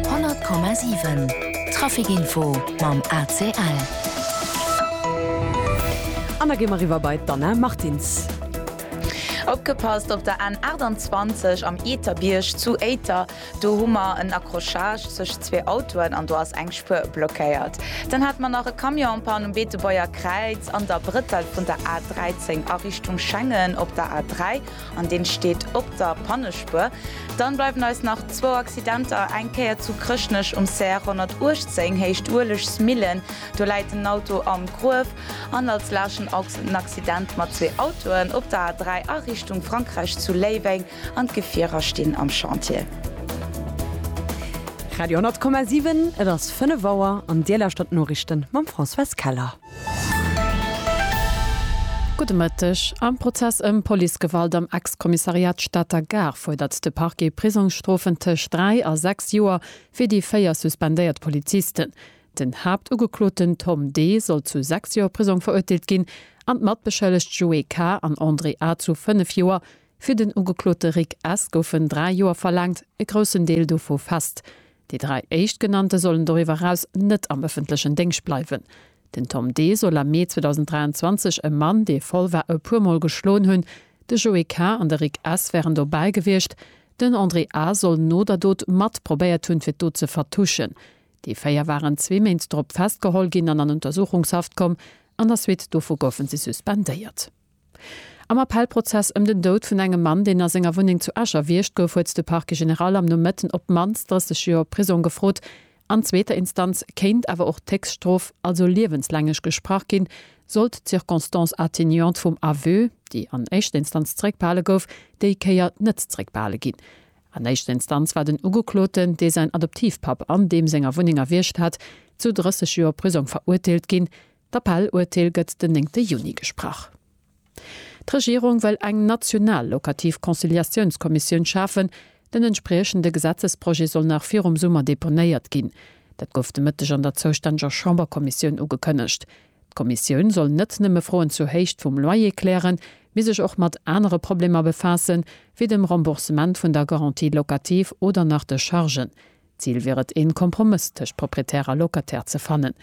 100,7 Traficinfo mam ACL. An da gi mer eriwwer bei d'Anna Martins. Opgepasst op der N 28 am Eeterbierg zu Éiter. Do hu mer en Accrochage tëscht zwee Autoen an do ass eng Spuer blockéiert. Dann hate mer nach e Camion en panne um Beetebuerger Kräiz an der Brëttel vun der A 13 a Richtung Schengen op der A 3. an deen steet op der Pannespuer. Dann bleiwen eis nach zwou Accidenter, eng Kéier zu Chrëschtnech um CR 118 héicht Uelegsmillen, do läit en Auto am Gruef, an als laschen Ochs en Accident mat zwee Autoen op der A3 a Richtung Frankräich zu Léiweng an d'Gefierer stinn am Chantier. Radio 100,7, et ass 5 Auer an Dir lauschtert d'Noriichten mam Françoise Keller. Gudde Mëtteg. Am Prozess ëm Policegewalt am Ex-Kommissariat Stater Gare fuerdert de Parquet Prisongsstrofen tëscht dräi a sechs Joer fir déi véier suspendéiert Polizisten. Den Haaptugekloten Tom D. soll zu sechs Joer Prisong verurteelt ginn an d'Matbeschëllegt Joé K. an André A. zu fënnef Joer. Fir den Ugeklote Rick S. goufen dräi Joer verlaangt, e groussen Deel dovu fest. Déi dräi Éischtgenannte sollen doriwwer eraus net am ëffentlechen Déngscht bleiwen. Den Tom D. soll am Mee 2023 e Mann, dee voll war, e puer Mol geschloen hunn. De Joé K. an de Rick S. wären dobäi gewiescht. Den André A. soll no der Dot mat probéiert hunn, fir d'Dot ze vertuschen. Déi véier waren zwee Méint drop festgeholl ginn an an Untersuchungshaft komm. An der Suite dovu goufe si suspendéiert. Am Appellprozess ëm den Doud vun engem Mann, deen a senger Wunneng zu Esch erwiergt gouf, huet de Parquet général am Nomëtten op d'mannst 30 Joer Prisong gefrot. An zweeter Instanz kéint awer och d'Héchststrof, also liewenslängeg, gesprach ginn, sollt d'Circonstance atténuante vum Aveu, déi an éischter Instanz zeréckbehale gouf, déi Kéier net zeréckbehale ginn. An éischter Instanz war den Ugekloten, dee säin Adoptivpapp an deem senger Wunneng erwiergt hat, zu 30 Joer Prisong verurteelt ginn. D'Appell-Urteel gëtt den néngte Juni gesprach. D'Regierung wëll eng national lokativ Conciliatiounskommissioun schafen. Den entspriechende Gesetzesprojet soll nach virum Summer deponéiert ginn. Dat gouf de Mëtteg an der zoustänneger Chamberkommissioun ugekënnegt. D'Kommissioun soll net nëmme Froen zur Héicht vum Loyer klären, mee sech och mat anere Problemer befaassen, wéi dem Remboursement vun der Garantie locative oder nach de Chargen. D'Zil wier et, een Kompromëss tëscht Proprietär a Locataire ze fannen.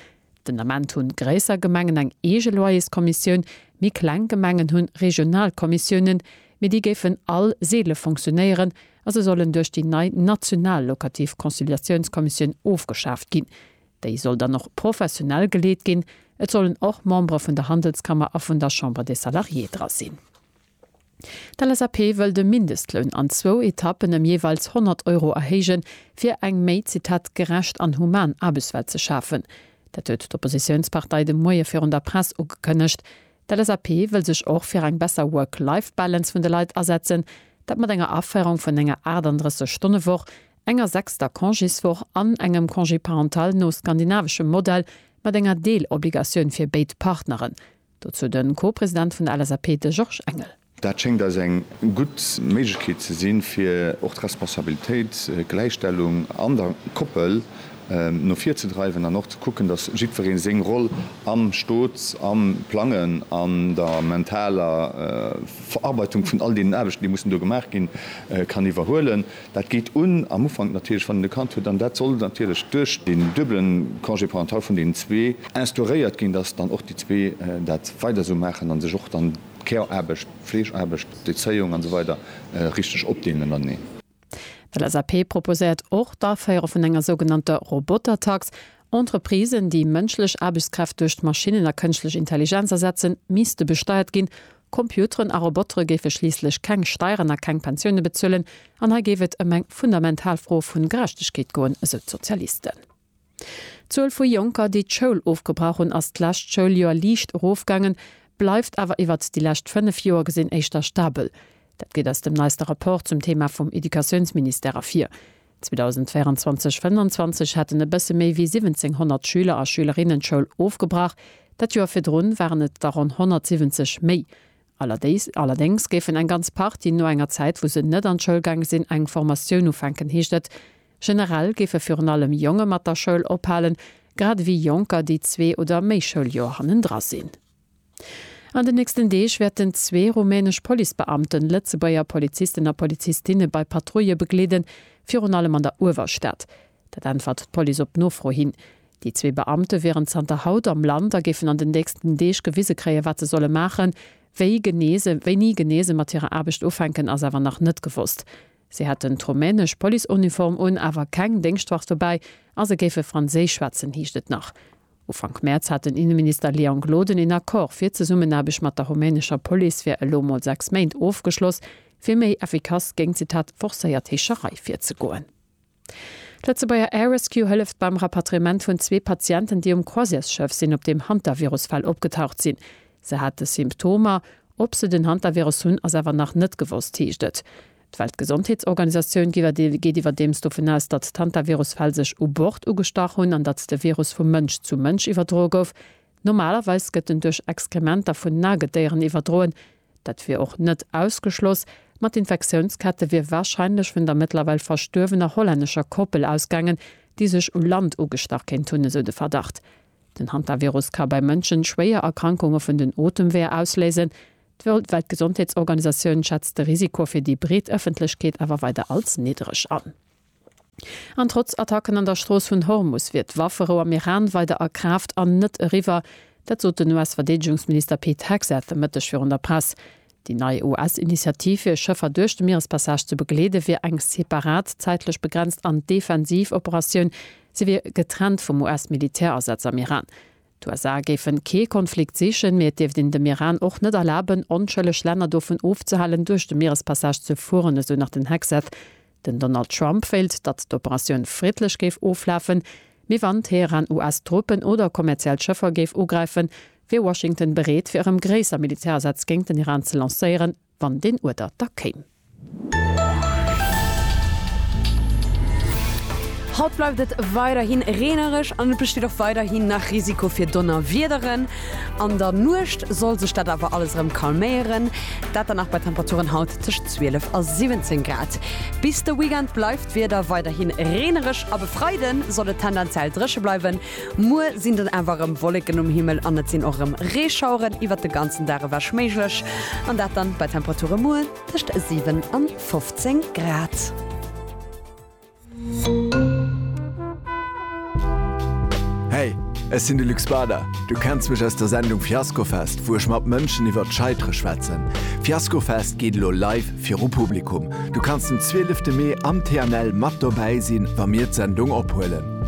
Den Ament hunn gréisser Gemengen eng eege Loyerskommissioun, méi kleng Gemengen hunn regional Kommissiounen, mee déi géifen all seele fonctionnéieren a se sollen duerch déi nei national locativ Conciliatiounskommissioun ofgeschaaft ginn. Déi soll dann och professionell geleet ginn, et sollen och Membere vun der Handelskammer a vun der Chambre des Salariés dra sinn. D'LSAP wëll de Mindestloun an zwou Etappen ëm jeeweils 100 Euro erhéijen, fir eng méi, Zitat, gerecht an human Aarbechtswelt ze schafen. Dat huet d'Oppositiounspartei de Moie virun der Press ugekënnegt. D'LSAP wëll sech och fir eng besser Work-Life-Balance vun de Leit asetzen. Dat mat enger Aféierung vun enger 38 Stonne Woch, enger sechster Congéswoch an engem Congé parental no skandinaveschem Modell mat enger Deelobligatioun fir béid Partneren. Dozou de Co-President vun der LSAP, de Georges Engel. Dat schéngt eis eng gutt Méiglechkeet ze sinn, fir och d'Responsabilitéit, d'Gläichstellung an der Koppel no vir ze dreiwen an och ze kucken, datt jiddweree seng Roll am Stot, am Plangen, an der mentaler Verarbeitung vun all deenen Aarbechten, déi mussen do gemaach ginn, kann iwwerhuelen. Dat geet un, am Ufank natierlech, wann en e Kand huet, an dat soll natierlech duerch deen duebele Congé parental vun deenen zwee instauréiert ginn, dass dann och déi zwee dat weider esou maachen a sech och dann d'Care-Aarbecht, d'Fleegeaarbecht, d'Erzéiung an esou weider richteg opdeelen ënnereneen. D'LSAP proposéiert och d'Aféiere vun enger sougenannter Robotertax. Entreprisen, déi mënschlech Aarbechtskräft duerch Maschinnen a kënschtlech Intelligenz ersetzen, misste besteiert ginn, Computeren a Robotere géife schliisslech keng Steieren a keng Pensioune bezuelen, an hei géif et ëm eng fundamental Fro vu Gerechtegkeet goen, esou d'Sozialisten. D'Zuel vu Jonker, déi d'Schoul ofgebrach hunn, ass d'lescht Schouljoer liicht erofgaangen, bleift awer iwwert déi lescht 5 Joer gesinn éischter stabel. Dat geet aus dem neiste Rapport zum Theema vum Educatiounsministère ervir. 2024 25 haten e bësse méi wéi 1700 Schüler a Schülerinnen d'Schoul ofgebrach, dat Joer virdrun waren et der ronn 170 méi. Allerdéngs géifen eng ganz Partie no enger Zäit, wou se net an d'Schoul gaange sinn, eng Formatioun ufänken, heescht et. Generell géife virun allem Jonge mat der Schoul ophalen, grad ewéi Jonker, déi zwee oder méi Schouljoer hannendra sinn. An den nächsten Deeg wäerten zwee rumänesch Policebeamten Lëtzebuerger Polizisten a Polizistinne bei Patrouille begleeden, virun allem an der Uewerstad. Dat äntwert d'Police op Nofro hin. Déi zwee Beamte wieren zanter haut am Land a géifen an den nächsten Deeg gewise kréien, wat se solle maachen. Wéi genee se wéini genee se mat hirer Aarbecht ufänken, ass awer nach net gewosst. Se hätten d'rumänesch Policeuniform un, awer keng Déngschtwaffe dobäi a se géife franséisch schwätzen, heescht et nach. Ufank Mäerz hat den Inneminister Leon Gloden een Accord fir d'Zesummenaarbecht mat der rumänescher Police fir elo mol 6 Méint ofgeschloss, fir méi effikass géint, Zitat, forcéiert Heescherei virzegoen. D'Lëtzebuerger Air Rescue hëlleft beim Rapatriement vun zwee Patienten, déi um Croisièresschëff sinn, op deem Hantavirus-Fäll opgetaucht sinn. Se hate Symptomer. Ob se den Hantavirus hunn, ass awer nach net gewosst, heescht et. D'Weltgesondheetsorganisatioun geet iwwerdeems dovun aus, datt d'Hantavirus-Fäll sech u Bord ugestach hunn an datt de Virus vu Mënsch zu Mënsch iwwerdroe gouf. Normalerweis gëtt en duerch Exkrementer vun Nagedéieren iwwerdroen. Dat wier och net ausgeschloss, ma d'Infektiounskette wier warscheinlech vun der mëttlerweil verstuerwener hollännescher Koppel ausgaangen, déi sech u Land ugestach kéint hunn, esou de Verdacht. Den Hantavirus ka bei Mënschen schwéier Erkrankunge vun den Otemweeër ausléisen. D'Weltgesondheetsorganisatioun schätzt de Risiko fir déi breet Ëffentlechkeet awer weider als niddreg an. An trotz Attacken an der Strooss vun Hormus wier d'Wafferou am Iran weider a Kraaft an net eriwwer. Dat sot den US-Verdeedegungsminister Pete Hegseth e Mëtteg virun der Press. Déi nei US-Initiativ, fir Schëffer duerch de Mierespassage ze begleede wier eng separat, zäitlech begrenzt an defensiv Operatioun. Se wier getrennt vum US-Militärasaz am Iran. D'USA géife kee Konflikt sichen, mee et dierft een dem Iran och net erlaben, onschëlleg Länner dovun ofzehalen, duerch de Mierespassage ze fueren, esou nach den Hegseth. Den Donald Trump wéilt, datt d'Operatioun friddlech géif oflafen, mee wann Teheran US-Truppen oder kommerziell Schëffer géif ugräifen, wier Washington bereet, fir erëm gréisser Militärasätz géint den Iran ze lancéieren, wann deen Uerder da kéim. Haut bleift et weiderhi reenereg an et besteet och weiderhi nach Risiko fir Donnerwiederen. An der Nuecht soll sech dat awer alles erëm calméieren, dat dann nach bei Temperaturen haut tëscht. tëscht 12 a 17 Grad. Bis de Weekend bleift d'Wieder weiderhi reenereg ab e Freide soll et tendenziell dréche bleiwen. Muer sinn dann awer erëm Wolleken um Himmel an et sinn och erëm Reeschaueren iwwert de ganzen Dag ewech méiglech an dat dann bei Temperature muer tëscht 7 an 15 Grad. Hey, ech sinn de Luc Spada. Du kenns mech aus der Sendung Fiaskofest, wou ech mat Mënschen iwwert d'Scheitere schwätzen. Fiaskofest geet elo live viru Publikum. Du kanns den 12 de Mee am TNL mat dobäi sinn, wa mir d'Sendung ophuelen.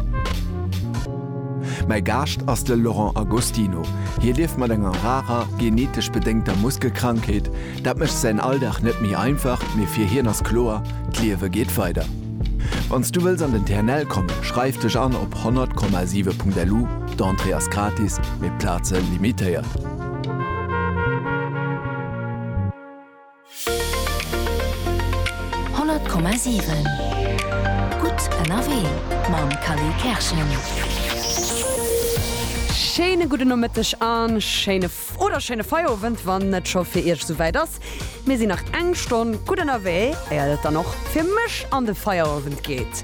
Mäi Gaascht ass de Laurent Agostino. Hie lieft mat enger rarer, genetesch bedéngter Muskelkrankheet. Dat mécht säin Alldag net méi einfach, mee fir hien ass kloer, D'Liewe geet weider. Wann s du wëlls an den TNL kommen, schreif dech an op 100,7.lu, d'Entrée ass gratis, mee d'Plaze limitéiert. Honnert Komma siwen, gutt ënnerwee mam Kally Kerschen. Schéine gudden Nomëtteg a schéine. Oder schéine Feierowend, wann et scho fir Iech souwäit ass. Mir sinn nach eng Stonn gutt ënnerwee, éiert et dann och fir mech an de Feierowend geet.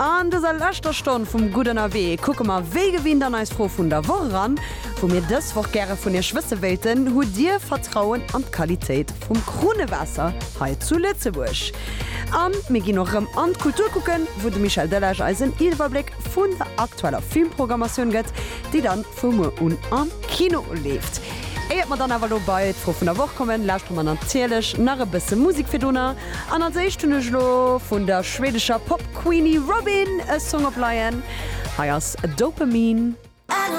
An dëser leschter Stonn vum Gutt ënnerwee kucke mer wéi gewinnt an eis Fro vun der Woch eran, wou mir dës Woch gäre vun Iech wësse wéilten, Hutt Dir Vertrauen an d'Qualitéit vum Krunnewaasser hei zu Lëtzebuerg? A mir ginn och erëm an d'Kultur kucken, wou de Michel Delage eis en Iwwerbléck vun der aktueller Filmprogrammatioun gëtt, déi dann. Wou muer un am Kino leeft. Éiert mer dann awer elo bei d'Fro vun der Woch kommen, lauschtere mer natierlech nach e bësse Musek virdrunner. An als éischt hunn ech elo vun der schweedescher Pop-Queenie Robyn e Song op Leien. Hei ass Dopamine.